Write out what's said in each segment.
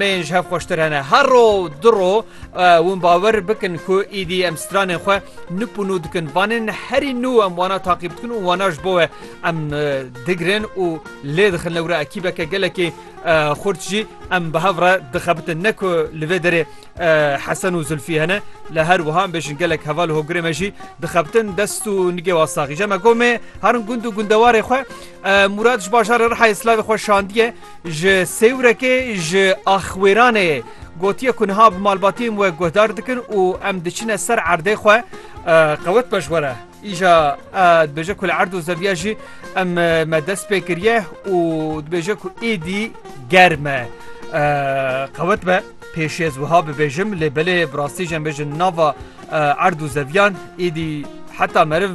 Yên ji hev xweştir hene. Her ro du ro hûn bawer bikin ku îdî em stranên xwe nûp û nû dikin. Vanên herî nû em wana taqîb dikin û wana ji bo we em digirin û lê dixin lewre ekîbeke gelekî xurt jî em bi hev re dixebitin. Ne ku li vê derê Hesen û Zulfî hene li her wiha em bêjin gelek heval hogirê me jî dixebitin dest û nigê wa saxî. Je me gomê herin gund û gundewarê xwe Murad ji bajarê Rihayê slavê xwe şandiye. Ji Sêwrekê ji Axwêranê gotiye ku niha bi malbatiyên we guhdar dikin û em diçine ser erdê xwe qewet be ji we re. Îja dibêje ku li erd û zeviya jî em me dest pê kiriye û dibêje ku êdî germ e. Qewet be pêşê ez wiha bibêjim lê belê bi rastî jî em bêjin nava erd û zeviyan êdî heta meriv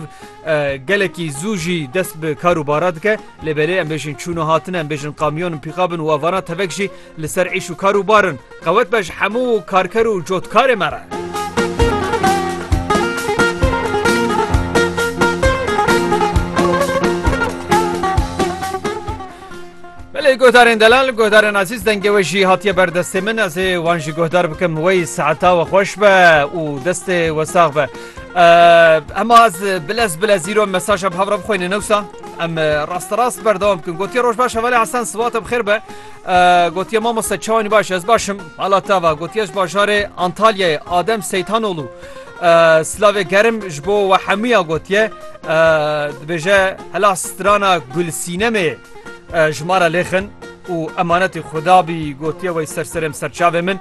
gelekî zû jî dest bi kar û bara dike. Lê belê em bêjin çûn û hatin, em bêjin kamyon in, pîkab in û avanan tevek jî li ser îş û kar û bar in. Qewet be ji hemû karker û cotkarê me re. Belê guhdarên delal, guhdarên azîz dengê we jî hatiye ber destê min ez ê wan jî guhdar bikim wey saeta we xweş be û destê we sax be. Hema ez bilez bilez îro mesaja bi hev re bixwîne newsa. Em rasterast berdewam bikin gotiye roj baş hevalê Hesen siwate bixêr be gotiye mamoste çawanî baş ez başim hala te va gotiye ji bajarê Antalyayê Adem Seytanolû Slavê gerim ji bo we hemûya gotiye dibêje hela strana gulsînemê ji mara lêxin û emanetê xudabî gotiye wey serserêm serçavê min.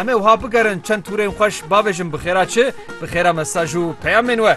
Em ê wiha bigerin çend tûrên xweş bavêjin bi xêra çi, bi xêra mesaj û peyamên we.